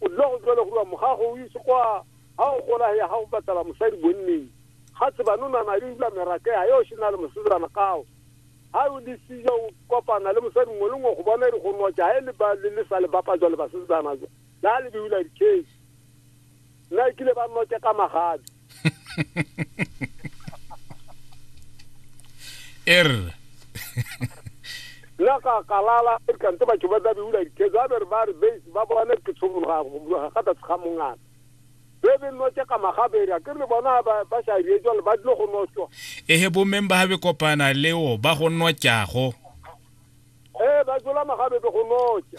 O dula go jwale go mogago o itse kwa ga o gola ya ga o batlela mosadi bonneng ga tsebane o nana le dula merake ya yo se na le mosetsana kao ga o le sijo o kopana le mosadi mongwe le mongwe go bona re go notsa ga e le ba le sa le bapa jwa le basetsana jo la le beula dikgei nna e kile ba notsa ka magabi er nna ka kalala e kante batho ba tla beula diketso a bere ba re base ba bone ke tshogologa ga tlase ga mongana be be notse ka magabere ke re bona ba sa rie jalo ba dilo go notswa ehe bo member ha be kopana leo ba go notjago ee ba jola magabebe go notsa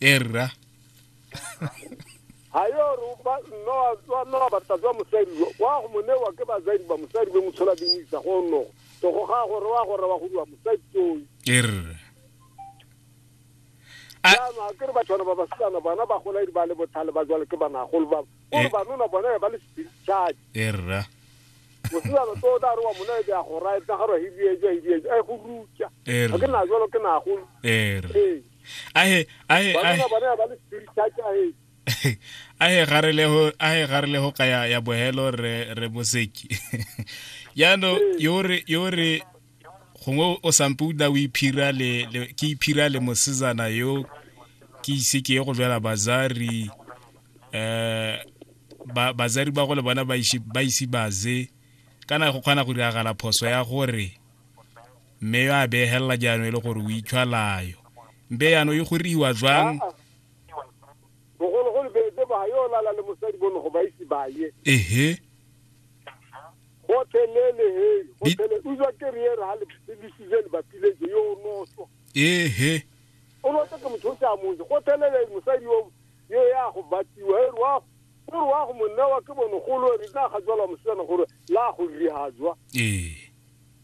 e rra ga yo re ba nno wa tswa nno wa batla tswa mosadi yo wa go monewa ke bazadi ba mosadi be motshola di isa go nno to go ga gore wa gore wa go diwa mosadi tsoi e rra A- jaanong a ke re batshwana ba basilana bona ba gola di ba le botlhale ba jwale ke banagolo ba Eh. gore banona bona ba le spiritual e rra mosilana to o tla re wa mona e ya go raya tsa garo hibietsa hibietsa a e go rutsa E ga ke re. na jwalo ke nagolo e rra ee ahe ahe ahe ahe ga re le go ahe ga re le go ka ya ya bohelo re re moseki yano yore yore gongwe o sampe o dula o iphira le ke iphira le mosezana yo ke ise ke ye go jala bazari eh ba bazari ba go le bona ba ise ba ise baze kana go kgona go diragala phoso ya gore mme yo a beegelela jaanong e le gore o itshwalayo mpe yaanong e goriwa jwang bogologolo beetse ba yo lala le mosadi bone go ba ise ba ye ehe gotlhelele he gotlhele utswa ke re ere ga lebisize le bapileje yo o noso ehe o noso ke motho o se a motse gotlhelele mosadi yo yo ya go batiwa e re wa o re wa go monnewa ke bonogolo re tla ga jwala mosetsana gore la go rihajwa ee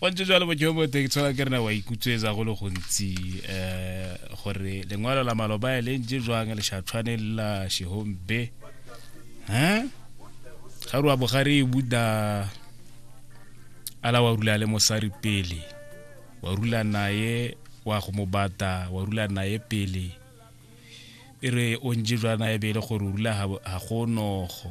go ntse jalo bojobote ke tshola ke rena wa ikutswetsa go le gontsi um gore lengwalo la maloba e le ntse jwang le shatshwane la shehombe um ga re wa bogare e buda ala wa rula le mosari pele wa rula naye wa go mo bata wa rula naye pele e re o ntse jwa naye bele gore o rula ga gonogo